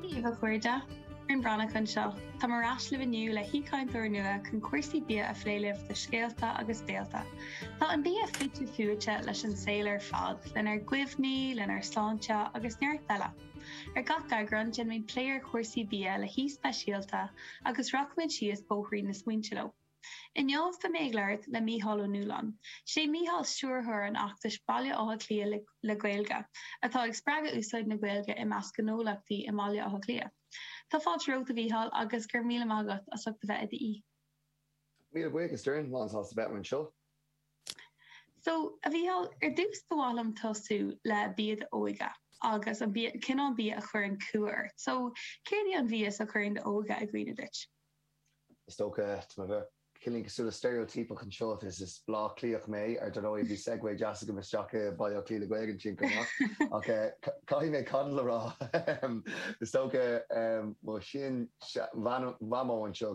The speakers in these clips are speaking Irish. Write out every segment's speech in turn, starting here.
Dia daoibh a chairde, Doireann Breathnach anseo. Tá mé ar ais libh inniu le haoichainteoir nua chun cúrsaí bia a phlé libh do Scéalta agus Béalta. Tá an bia fite fuaite leis an saol ar fad, lenár gcuimhní, lenár sláinte agus neart eile. Ar gach eagrán déanaimid plé ar chúrsaí bia le haoi speisialta agus rachaimid síos bóithrín na smaointe leo. Inniu tá mé ag labhairt le Mícheál Ó Nualláin. Sé Mícheál stiúrthóir an fheachtais Baile Átha Cliath le Gaeilge, atá ag spreagadh úsáid na Gaeilge i measc gnólachtaí i mBaile Átha Cliath. Tá fáilte romhat, a Mhícheál, agus go raibh míle maith agat as ucht a bheith i d'aoi. Míle buíochas, Doireann. Lánsásta bheith anseo. So, a Mhícheál, ar dtús ba mhaith liom tosú le bia d'óige agus an bia, cineál bia a chuireann cumha ort. So, céard í an bhia is a chuireann d'óige i gcuimhne duit? Is dócha, tá mé bheith cineálín cosúil le steiréotíopacht anseo, is is Baile Átha Cliathach mé, ar ndóigh, bhí segue deas agam isteach i Baile Átha Cliath le Gaeilge ansin chomh maith, ach caithfidh mé coddle a rá, is dócha, mo shean-mhamó anseo,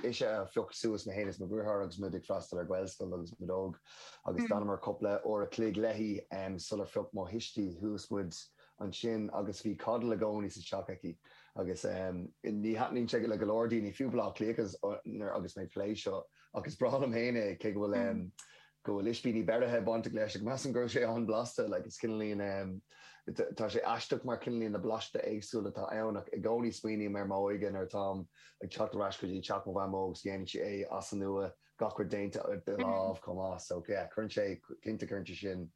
ise a phioc suas mé féin is mo dheartháir agus muid ag freastal ar Ghaelscoil agus muid óg agus d'fhanamar cúpla uair a' chloig léi sular phioc mo thuistí suas muid ansin agus bhí coddle i gcónaí sa teach aici agus ní thaitníonn sé le go leor daoine, fiú Baile Átha Cliathaigh nuair agus mé ag plé seo, ach is breá liom féin é, cé go bhfuil go bhfuil ispíní beirithe bainteach leis ach measaim go raibh sé an-bhlasta, like is cineálín tá sé aisteach mar cineálín na blastaí éagsúla atá ann ach i gcónaí smaoiním ar m'óige nuair atáim ag teacht ar ais go dtí teach mo mhamó agus déanann sí é as an nua gach rud déanta de láimh chomh maith so yeah cuireann sé cinnte cuireann sé sin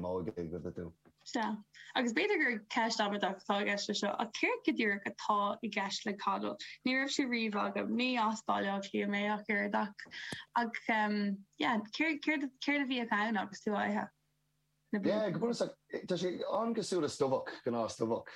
m'óige i gcuimhne dom. Sea. Agus b'fhéidir gur ceist amaideach atá i gceist leis seo, ach céard go díreach atá i gceist le coddle? Ní raibh sé riamh agam, ní as Baile Átha Cliath mé ach oiread ach ach yeah céard céard céard a bhíodh ann agus tú á ithe? na bliana. Yeah, go bunúsach, tá sé an-cosúil le stobhach, gnáth-stobhach,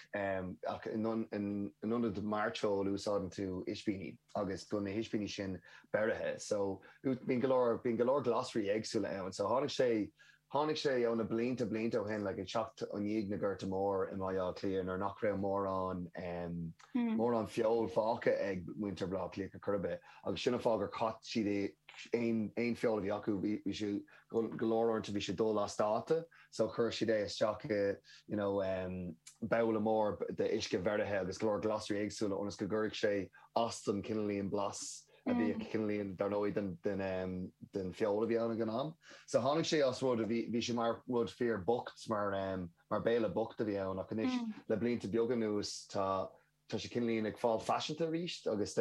ach in ionad mairteoil úsáideann tú ispíní agus bíonn na hispíní sin beirithe. So bíonn go leor, bíonn go leor glasraí éagsúla ann. So tháinig sé, tháinig sé ó na blianta, blianta ó shin, like, ag teacht i ndiaidh na Gorta Mór i mBaile Átha Cliath nuair nach raibh mórán, mórán feoil fágtha ag muintir Bhaile Átha Cliath ar chor ar bith agus sin an fáth gur chaith siad aon, aon feoil a bhí acu, bhí siad, Go leor uaireanta bhí sé dul as dáta, so chuir siad é isteach i you know babhla mór d'uisce beirithe agus go leor glasraí éagsúla ionas go gcuirfeadh sé as don cineálín blas a bhí aici, cineálín dar ndóigh den feoil a bhí ann ag an am. So tháinig sé as rud a bhí, bhí sé mar rud fíor bocht, mar béile bocht a bhí ann ach anois le blianta beaga anuas tá Tá sé cineálín ag fáil faiseanta arís agus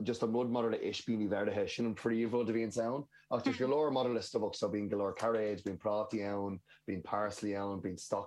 just an rud maidir le ispíní bheirithe, sin an príomhrud a bhíonns ann. Ach tá sé go leor maidir le stobhach so bíonn go leor cairéid, bíonn prátaí ann, bíonn parsley ann, bíonn.